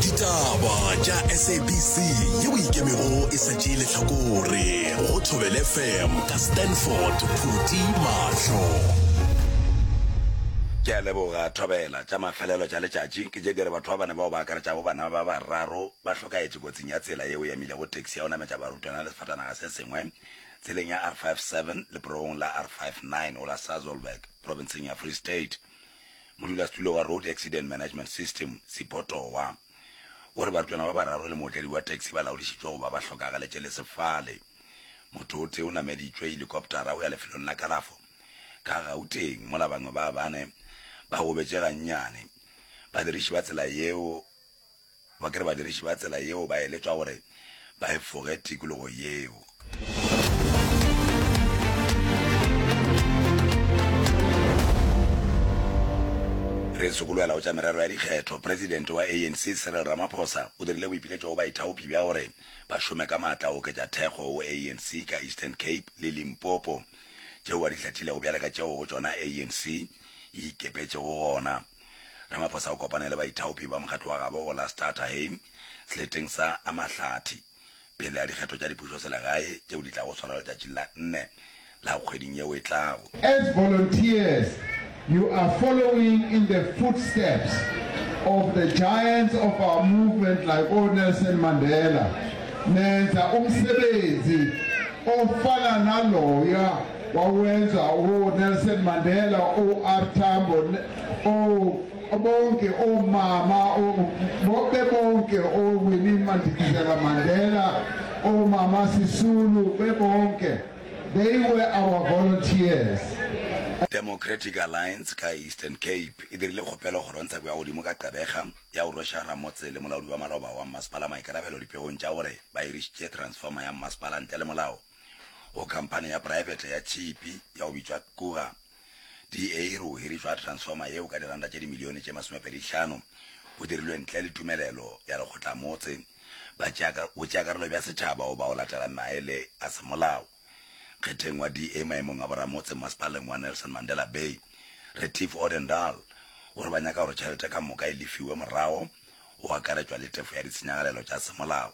ditaba tša sabc yeo ikemego e sa tšee letlhakore go thobele fm ka stanford phuti mahlo ke a leboga thobela tša mafelelo tša letšatši ke tše di re batho ba bane bao ba akaretša bo bana ba bararo ba hlokaetše kotsing ya tsela yeo ya mile go taxi ya go nametša barutwana le sefatanaga se sengwe tseleng ya r57 leporogong la r59 go la sazolberg provinceng ya free state Modulasetulo wa Road Accident Management System, Sipotowa, o re barutwana ba bararo le mootledi wa taxi ba laodišitšwe go ba ba hlokagaletše le sefale. Motho o tee o nameditšwe helikoptara go ya lefelong la kalafo ka Gauteng mola bangwe ba bane ba gobetše gannyane. Badiriši ba tsela yeo Ba ke re badiriši ba tsela yeo ba eletšwa gore ba efoge tikologo yeo. Re sokolwela go tša merero ya dikgetho, Presidente wa ANC Cyril Ramaphosa o dirile boipiletšo go baithaopi bja gore ba šome ka maatla go oketša thekgo go ANC ka Eastern Cape le Limpopo tšeo a di hlathilego bjale ka tšeo go tšona ANC e ikepetšego gona. Ramaphosa o kopane le baithaopi ba mokgatlo wa gabo go la Staterheim seleteng sa a Mahlathi pele a dikgetho tša dipušoselegae tšeo di tlago swarwa letšatšing la nne la kgweding yeo e tlago. As volunteers, you are following in the footsteps of the giants of our movement like o Nelson Mandela, nenza umsebenzi ofana naloya wa go enza o Nelson Mandela o R Tambo o bonke o mama o be bonke o Winnie Mandikizela Mandela o mama Sisulu be bonke they were our volunteers. Democratic Alliance ka Eastern Cape e dirile kgopelo go Kgorongtsheko ya Godimo ka Gqebega ya go rweša ramotse le molaodi wa maloba wa mmasepala maikarabelo dipegong tša gore ba hirišitše transformer ya mmasepala ntle le molao. go khamphani ya praefete ya tšhipi ya go bitšwa Kura DA e re go hirišwa ga transformer yeo ka diranta tše dimilione tše masomepedi hlano go dirilwe ntle le tumelelo ya lekgotlamotse, botšeakarolo bja setšhaba goba go latela maele a semolao. Kgetheng wa DA maemong a boramotse mmasepaleng wa Nelson Mandela Bay, Retief Odendaal, o re ba nyaka gore tšhelete ka moka e lefiwe morago, go akaretšwa le tefo ya ditshenyagalelo tša semolao.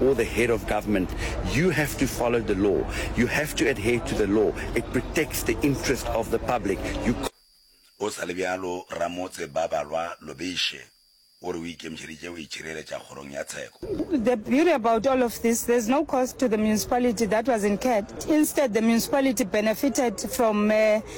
or the head of government, you have to follow the law. You have to adhere to the law. It protects the interest of the public. You Go sa le bjalo, ramotse Babalwa Lobeše o re o ikemišeditše go itšhireletša kgorong ya tsheko. The beauty about all of this, there's no cost to the municipality that was incurred. Instead, the municipality benefited from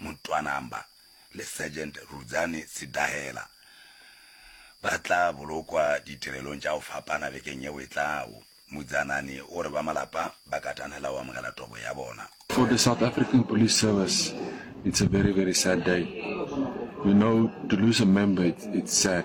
Mutwanamba le Sergeant Rudzani Sidahela ba tla bolokwa ditirelong tša go fapana bekeng yeo e tlago. Mudzanani o re ba malapa ba katanela go amogela tobo ya bona. For the South African Police Service it's a very very sad day, you know to lose a member it's sad.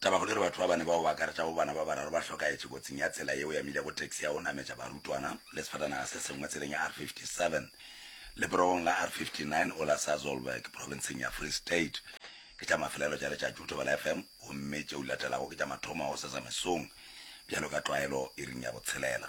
Tabakgolo e re batho ba bane bao ba akaretšago bana ba bararo ba hlokaetše kotsing ya tsela yeo ya milego taxi ya go nametša barutwana le sefatanaga se sengwe tseleng ya R57 leperogong la R59 o la Sasolburg profenseng ya Free State. Ke tša mafelelo tša letšatši go Thobela FM gomme tšeo di latelago ke tša mathomo a go sesa mesong bjalo ka tlwaelo iring ya botshelela.